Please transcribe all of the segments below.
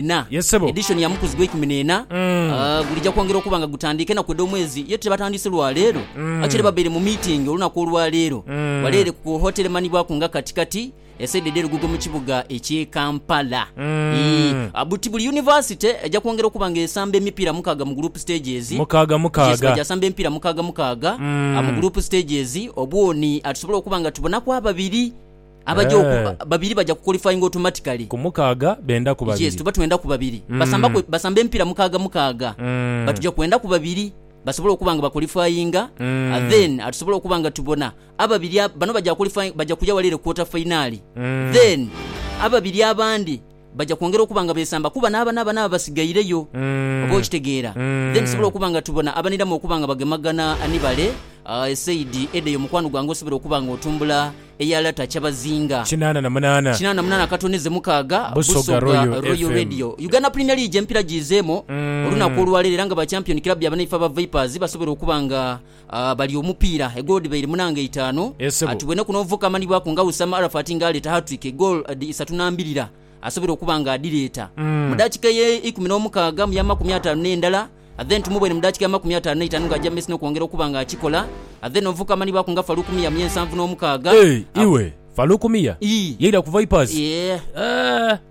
ena. Yes, ssebo. Edition ya Mukuzi gw'eikumi n'ena ah, gulija kwongera okuba nga gutandiika enaku edh'omwezi ye tibatandiise lwa leero. Actually babaire mu meeting olunaku olwa leero ghale ere ku hotel emanhibwaku nga Kati Kati esaidi edh'e Lugogo mu kibuga eky'e Kampala. Ii, ah, buti buli University eja kwongera okuba nga esamba emipiira mukaaga mu group stages. Mukaaga Yes, mukaaga. baja samba emipiira mukaaga mukaaga ah, mu group stages obwoni ah, tusobole okuba nga tubonaku ababiri. Abaja oku, Eh. ba- babiri baja kuqualifyinga automatically. Ku mukaaga benda ku Yes, babiri. tuba twenda ku babiri. Mm. Basamba ku, basamba empira mukaaga mukaaga. Mm. But tuja kwenda ku babiri basobole okuba nga baqualifyinga Mm. and then atusobole okuba nga tubona ababiri ab- bano baja qualifying baja kuja wali ere quarter finali Mm. then ababiri abandi baja kwongera okuba nga besamba kuba naaba naaba naaba basigaireyo. Oba okitegeera? Then tusobole okuba nga tubona abaniramu okuba nga bagemagana ni bale, esaidi eda eyo mukwano gwange osobole okuba nga otumbula eya Lata Kyabazinga. Kinaana na munaana. Kinaana na munaana katoneze mukaaga Busoga Royal Radio. Uganda Premier League empira giizeemo olunaku olwaleero era nga ba champion club ya banaife aba Vipers basobole okuba nga Aah bali omupiira, egoolo dhibaire munange itaanu. Ati bwenaku n'omuvubuka amanhibwaku nga Wissam Arafat nga aleeta hat-trick egoolo dhi isatu na mbirira asobole okuba nga adhireeta mu daakika eye ikumi n'omukaaga mu ya makumi ataanu n'endala then tumubone mu daakika ya makumi ataanu n'eitaanu nga aja mu mesi n'okwongera okuba nga akikola then omuvubuka amanhibwaku nga Farouk Miya mu y'ensanvu n'omukaaga. Eeh iwe! Farouk Miya yaira ku Vipers? Eeh.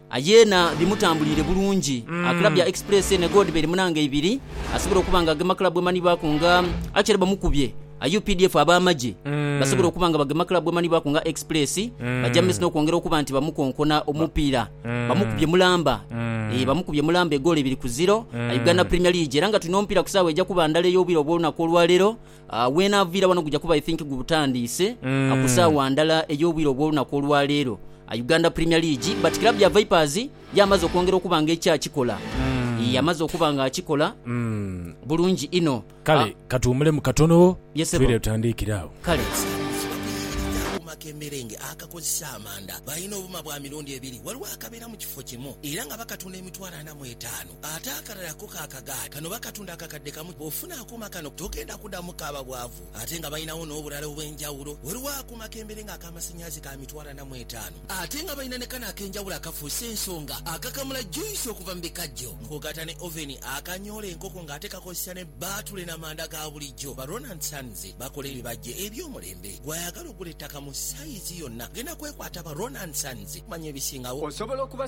Aye na bimutambuliire bulungi. A club ya Express ne Gold beri mu nanga ibiri asobola okuba nga agema club emanhibwaku nga Akyere bamukubye a updf ab'amagye basobola okuba nga bagema club emanhibwaku nga Express baja mu maiso n'okwongera okuba nti bamukonkona omupiira bamukubye mulamba ee bamukubye mulamba egoolo ibiri ku ziro a Uganda Premier League era nga tuno omupiira ku saawa eja kuba ndala ey'obwire obw'olunaku olwaleero. Weenaaviira wano guja kuba I think gutandiise ku saagha ndala ey'obwire obw'olunaku olwa leero. Uganda Premier League but club ya Vipers y'amaze okwongera okuba nga ekyakikola ii amaze okuba nga akikola bulungi inho. Kale katuwumulemu katono twidhe tutandiikire agho. Kale. Akuma k'emerenge akakozesa amanda. Balina obuma bwa mirundi ebiri. Waliwo akabeera mu kifo kimu era nga bakatunda emitwalo ana mu etaanu. Ate akalala ako ka kagaati kano bakatunda akakadde kamu. Bw'ofuna akuuma kano togenda kuddamu kaaba bwavu ate nga balinawo n'obulala obw'enjawulo. Waliwo akuuma k'embere ng'ak'amasannyalaze ka mitwalo ana mu etaano ate nga balina ne kano ak'enjawulo akafuuse ensonga akakamula juyisi okuva mu bikajjo ng'ogatta ne oveni, akanyoola enkoko ng'ate kakozesa ne bbaatule n'amanda ga bulijjo. Ba Rona and Sons bakola ebibajje eby'omulembe. Gwe ayagala okugula ettaka mu sayizi yonna genda kwekwata ba Rona and Sons okumanya ebisingawo. Osobola okuba.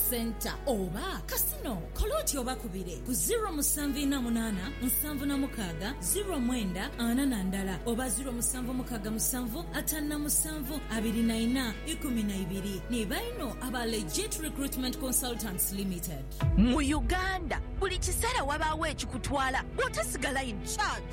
Centre oba Casino, kola oti obakubire ku ziro musanvu ina munaana nsanvu na mukaaga ziro mwenda ana na ndala oba ziro musanvu mukaaga musanvu ataanu na musanvu abiri na ina ikumi na ibiri ni baino aba Legit Recruitment Consultants Limited. Mu Uganda, buli kiseera wabaawo ekikutwala bw'otasigala in charge.